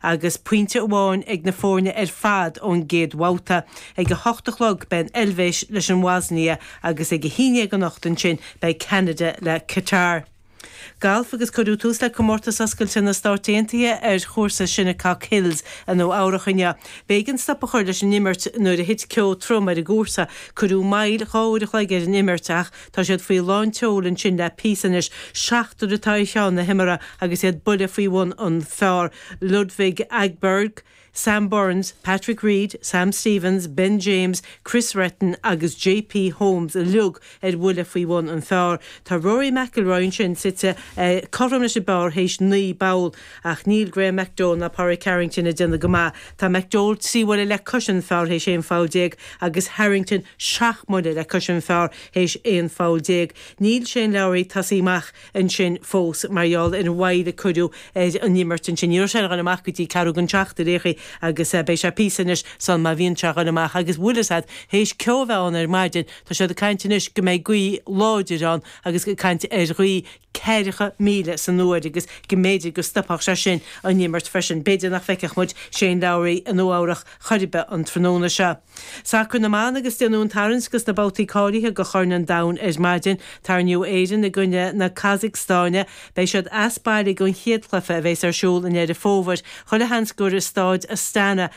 Agus pointe amháin ag na foirne ar fad ón gcéad bhabhta, ag a hocht a chlog beidh an Eilvéis leis an mBoisnia agus ag a haon dhéag anocht ansin beidh Ceanada le Catar. Galf agus cuireadh tús le Comórtas Oscailte na Stát Aontaithe ar Chúrsa Shinnecock Hills i Nua Eabhrach inniu. B'éigean stop a chur leis an imirt nuair a thit ceo trom ar an gcúrsa. Cuireadh moill dhá uair a chloig ar an imirt ach. Tá siad faoi lán tseoil ansin le píosa anois. Seachtar atá ar cheann na himeartha agus iad buile faoi bhun an phár, Ludvig Åberg, Sam Burns, Patrick Reed, Sam Stevens, Ben James, Kris Reitan agus JP Holmes uilig ar bhuille faoi bhun an phár. Tá Rory McIlroy ansin suite cothrom leis an bpár théis naoi bpoll. Ach níl Graeme McDowell ná Pádraig Harrington ag déanamh go maith. Tá McDowell trí bhuille le cois an phár théis aon pholl déag agus Harrington seacht mbuille le cois an phár théis aon pholl déag. Níl Shane Lowry tosaithe amach ansin fós mar gheall ar an mhoill a cuireadh ar an imirt ansin. Ní raibh sé ag dul amach go dtí ceathrú gan seacht ar aon chaoi, agus beidh sé píosa anois sul má bhíonn sé ag dul amach. Agus bhuel sea théis ceo a bheith ann ar maidin. Tá siad ag caint anois go mbeidh gaoth láidir ann agus ag caint ar ghaoth. ceathracha míle san uair agus go mb'fhéidir go stopfadh sé sin an imirt freisin. B'fhéidir nach bhfeicfeadh muid Shane Lowry i Nua Eabhrach chor ar bith an tráthnóna seo. Sacar na mban agus déanadh an tarraingt go sna babhtaí cáilithe go Chorn an Domhain ar maidin. Tarraingíodh Éirinn i gcoinne na Casacstáine. Beidh siad as baile gan chéad chluiche a bheas ar siúl i nDeireadh Fómhair. Chuile sheans gur i Stáid Astana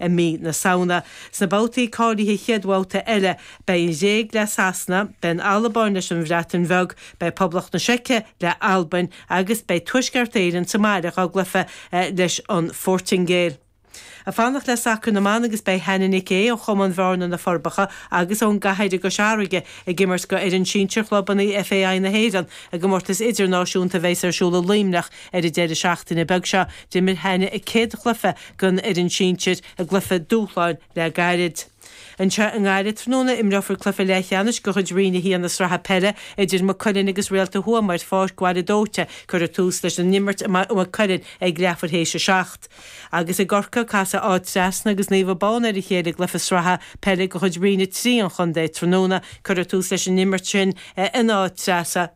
i mí na Samhna. Sna babhtaí cáilithe chéad bhabhta eile, beidh an Ghréig le Sasana, beidh an Albáin leis an Bhreatain Bheag, beidh Poblacht na Seice le Albain agus beidh Tuaisceart Éireann sa mbaile dhá gcluiche leis an Phortaingéil. Ag fanacht le sacar na mban agus beidh Hannah Nic Aodh ó Chumann Bhearna, Na Forbacha agus ón gCathair i gCois Fharraige ag imirt go fhoireann sinsir chlubanna FAI na hÉireann i gcomórtas idirnáisiúnta a bheas ar siúl i Luimneach ar an deireadh seachtaine beag seo. D'imir Hannah a céad chluiche gan fhoireann sinsir i gcluiche dúshláin le gairid. Anseo i nGaillimh tráthnóna, imreofar cluiche leathcheannais de chuid Roinn 1 na Sraithe Peile idir Maigh Cuilinn agus Réalta Thuama ar Pháirc Bhaile Dóite. Cuirfear tús leis an imirt i Maigh Cuilinn ag leathuair théis a seacht. Agus i gCorcaigh, casfaidh Áth Trasna agus Naomh Abán ar a chéile i gcluiche sraithe peile de chuid Roinn 3 an chontae tráthnóna. Cuirfear tús leis an imirt sin in Áth Trasna,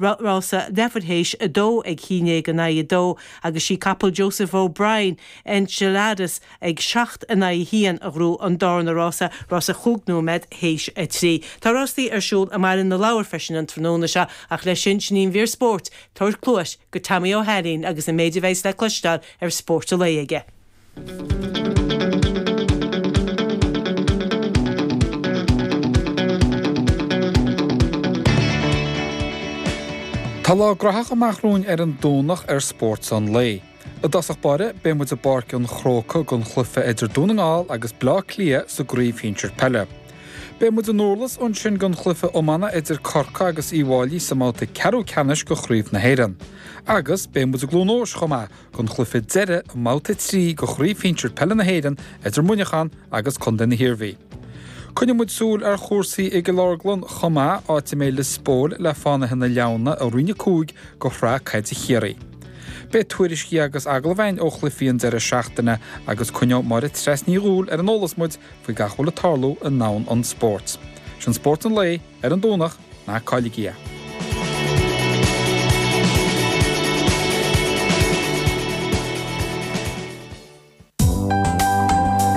rása leathuair théis a dó ag a haon déag in aghaidh a dó agus sí capall Joseph O'Brien, Enceladus ag seacht in aghaidh a haon a ghnóthaigh an dárna rása, rása chúig nóiméad théis a trí. Tá rástaí ar siúl i mBaile na Lobhar freisin an tráthnóna seo ach leis sin, sin í an mhír spóirt, tabhair cluais go Tommy Ó hAilín agus an méid a bheas le cloisteáil ar Spórt an Lae aige. Tá lá gnaitheach amach romhainn ar an Domhnach ar Spórt an Lae. I dtosach báire, beidh muid i bPáirc an Chrócaigh don chluiche idir Dún na nGall agus Bleá Cliath sa gcraobh shinsir peile. Beidh muid i nDurlas ansin don chluiche iomána idir Corcaigh agus Uí bhFáilí sa mbabhta ceathrú ceannais de Chraobh na hÉireann. Agus beidh muid i gCluain Eois chomh maith don chluiche deireadh i mBabhta 3 de Chraobh Shinsir Peile na hÉireann idir Muineachán agus Contae na hIarmhí. Coinneoidh muid súil ar chúrsaí i gCill Orglan chomh maith, áit a mbeidh Liospóil le Fánaithe na Leamhna i Roinn 5 de Shraith Caide Chiarraí. Beidh tuairiscí agus agallaimh againn ó chluichí an deireadh seachtaine agus coinneoidh Máire Treasa Ní Dhúill ar an eolas muid faoi gach a bhfuil ag tarlú i ndomhan an spóirt. Sin Spórt an Lae ar an Domhnach. na Cóige.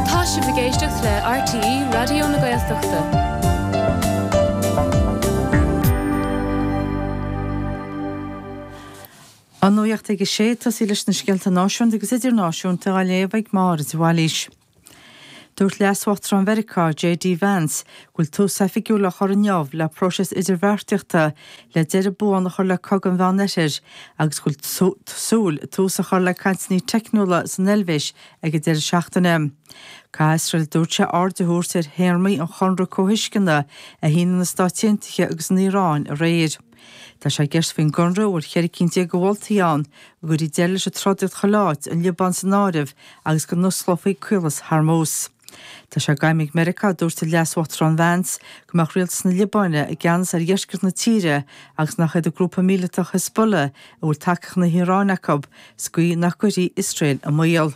Tá sibh ag éisteacht le RTÉ Raidió na Gaeltachta. An Nuacht ag a 6, tosaí leis na scéalta náisiúnta agus idirnáisiúnta á léamh ag Máire de Bhailís. Dúirt Leas-Uachtarán Mheiriceá, JD Vance, go bhfuil tús oifigiúil á chur inniu le próiseas idirbheartaíochta le deireadh buan a chur le Cogadh an Mheán Oirthir agus go bhfuil súil tús a chur le cainteanna teicniúla san Eilvéis ag an deireadh seachtaine. Caithfidh Iosrael, a dúirt sé, aird a thabhairt ar théarmaí an Chonradh Comhthuisceana a shínigh na Stáit Aontaithe agus an Iaráin aréir. Tá sé i gceist faoin gConradh a bhfuil cheithre cinn déag de mholtaí ann go gcuirfí deireadh leis an trodaíocht chuile áit, an Liobáin san áireamh, agus go n-osclófaí Caolas Hormuz. Tá sé d'aidhm ag Meiriceá, a dúirt an Leas-Uachtarán Vance, go mbeadh rialtas na Liobáine i gceannas ar dheisceart na tíre agus nach iad an grúpa míleatach Hezbollah, a bhfuil tacaíocht na hIaráine acu, sa gcaoi nach gcuirfí Iosrael i mbaol.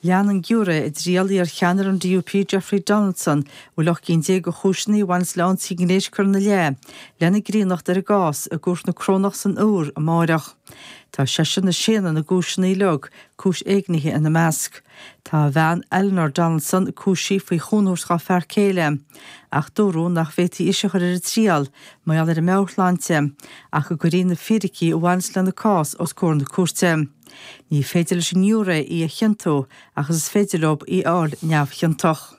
Leanfaidh an giúiré, i dtriail iar-cheannaire an DUP Jeffrey Donaldson, a bhfuil ocht gcinn déag de chúiseanna a bhaineas le hionsaithe gnéis curtha ina leith, lena mbreithniúchán ar an gcás i gCúirt na Corónach san Iúr amárach. Tá seisean ag séanadh na gcúiseanna uilig, cúis éignithe ina measc. Tá a bhean, Eleanor Donaldson, cúisithe faoi chúnamh a thabhairt dhá fear céile, ach dúradh nach bhféadfaí ise a chur ar a triail, mar gheall ar a meabhairshláinte, ach go gcuirfí na fíricí a bhaineas lena cás os comhair na cúirte. Ní féidir leis an ngiúiré í a chiontú, ach is féidir leo í a fháil neamhchiontach.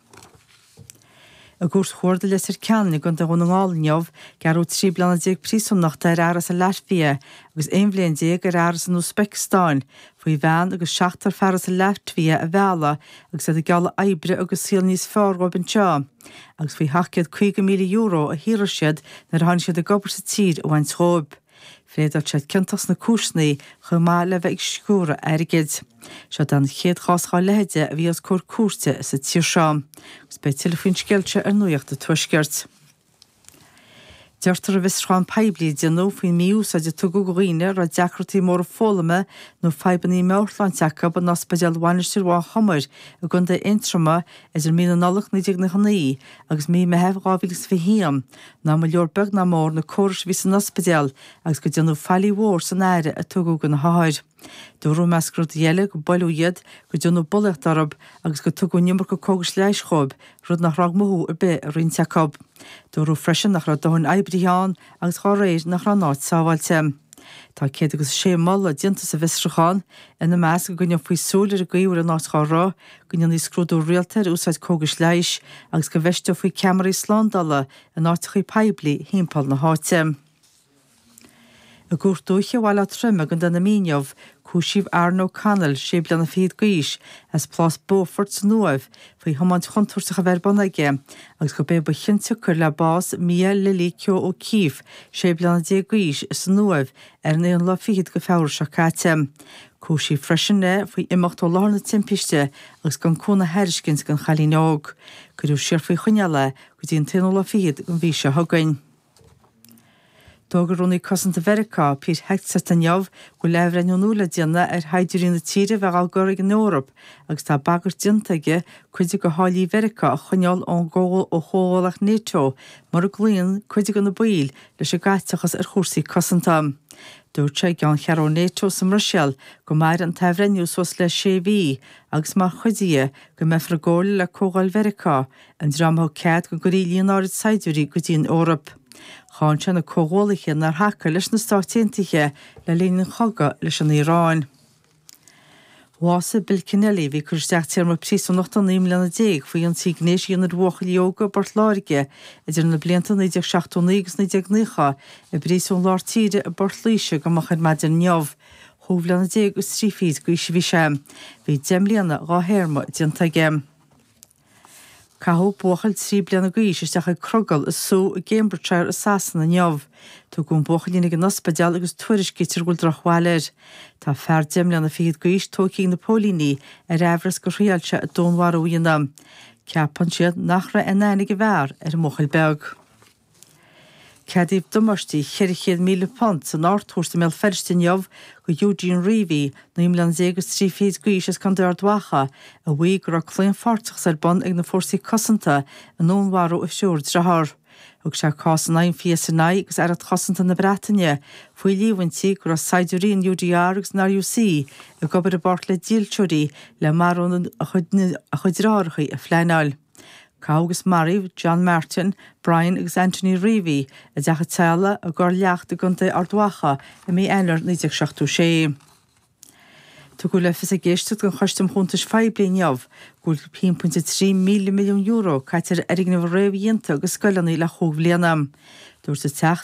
I gCúirt Chuarda Leitir Ceanainn i gContae Dhún na nGall inniu, gearradh trí bliana déag príosúnachta ar fhear as an Laitvia agus aon bhliain déag ar fhear as an Úisbeiceastáin faoi bhean agus seachtar fear as an Laitvia a mhealladh agus iad ag gealladh oibre agus saol níos fearr dhóibh anseo agus faoi €750,000 a shaothraigh siad nuair a tháinig siad ag obair sa tír a bhaint dhóibh. Phléadáil siad ciontach sna cúiseanna chomh maith le bheith ag sciúradh airgid. Seo den chéad chás dá leithéide a bhí os comhair cúirte sa tír seo, agus beidh tuilleadh faoin scéal seo ar Nuaíocht a' Tuaiscirt. Deirtear i bhfiosrúchán poiblí a déanadh faoin mí-úsáid a tugadh do dhaoine a raibh deacrachtaí móra foghlama nó fadhbanna meabhairshláinte acu in Ospidéal Mhainistir Mhaigh Chomair i gContae Aontroma idir mí na Nollag 1999 agus mí Meithimh 2021 nach mba leor beag ná mór na córais a bhí san ospidéal agus go déanadh faillí mhór san aire a tugadh do na hothair. Dúradh, measc rudaí eile, go buaileadh iad, go déanadh bulaíocht orthu agus go tugadh an iomarca cógais leighis dhóibh, rud nach raibh mothú ar bith i roinnt acu. Dúradh freisin nach raibh dóthain oibrithe ann agus dá réir nach raibh an áit sábháilte. Tá céad agus a sé moladh déanta sa bhfiosrúchán, ina measc, go gcoinneofaí súil ar an gcaoi a bhfuil an áit dhá rith, go ndéanfaí scrúdú rialta ar úsáid cógais leighis agus go bhfeisteofaí ceamaraí slándála in áiteachaí poiblí thimpeall na háite. I gCúirt Dúiche Bhaile Átha Troim i gContae na Mí inniu, cúisíodh Aaron O'Connell, sé bliana fichead d'aois, as Plás Beaufort san Uaimh faoi thiomáint chontúirteach a bheith ar bun aige agus gurb é ba chionsiocair le bás Mia Lily Keogh O'Keeffe, sé bliana déag d'aois, san Uaimh ar an aonú lá fichead de Feabhra seo caite. Cúisíodh freisin é faoi imeacht ó láthair na timpiste agus gan cúnamh a thairiscint don chailín óg. Cuireadh siar faoi choinneáil é go dtí an t-aonú lá fichead den mhí seo chugainn. D'fhógair Rúnaí Cosanta Mheiriceá, Pete Hegseth, inniu go bhfuil athbhreithniú nua le déanamh ar shaighdiúirí na tíre a bheith dhá gcur ag an Eoraip agus tá bagairt déanta aige cuid de tháillí Mheiriceá a choinneáil ón gcomhghuaillíocht Nato mura gcloíonn cuid de na baill leis an gcaiteachas ar chúrsaí cosanta. Dúirt sé i gceanncheathrú Nato sa mBruiséil go mairfidh an t-athbhreithniú suas le sé mhí agus mar chuid de go mbeifear i gcomhairle le Comhdháil Mheiriceá, an dream a thug cead go gcuirfí líon áirid saighdiúirí go dtí an Eoraip. Cháin sé na comhghuaillithe nár thacaigh leis na Stáit Aontaithe le linn an chogadh leis an Iaráin. Bhásaigh Bill Kenneally, a bhí ag cur isteach téarma príosúnachta naoi mbliana déag faoi ionsaí gnéis a dhéanamh ar bhuachaillí óga i bPort Láirge idir na blianta 1979 agus 1990, i bPríosún Lár Tíre i bPort Laoise go moch ar maidin inniu. Chúig bhliana déag is trí fichid d'aois a bhí sé. Bhí deich mbliana dhá théarma déanta aige. Caitheadh buachaill trí bliana d'aois isteach ag crogall i sú i gCambridgeshire i Sasana inniu. Tugadh an buachaillín ag an ospidéal agus tuairiscítear go bhfuil drochbhail air. Tá fear deich mbliana fichead d'aois tógtha ag na póilíní ar aimhreas gur thriail sé dúnmharú a dhéanamh. Ceapann siad nach raibh aon aithne ag an bhfear ar an mbuachaill beag. Ceadaíodh damáistí £400,000 san Ardchúirt i mBéal Feirste inniu do Eugene Reavey, naoi mbliana déag is trí fichid d'aois as Contae Ard Mhacha, a mhaígh go raibh claonpháirteachas ar bun ag na fórsaí cosanta i ndúnmharú a thriúr driotháir. Thug sé cás in aghaidh an PSNI agus Aireacht Chosanta na Breataine faoi líomhaintí go raibh saighdiúirí an UDR agus an RUC ag obair i bpáirt le dílseoirí le marú a chuid driotháracha a phleanáil. Caitheadh agus maraíodh John Martin, Brian agus Anthony Reavey i dteach an teaghlaigh i gCorr Leacht i gContae Ard Mhacha i mí Eanáir 1976. Tugadh le fios ag éisteacht den Choiste um Chuntais Phoiblí inniu go bhfuil €1.3 míle milliún caite ar fhoirgnimh réamhdhéanta ag scoileanna le chúig bhliana. Dúirt an Teachta.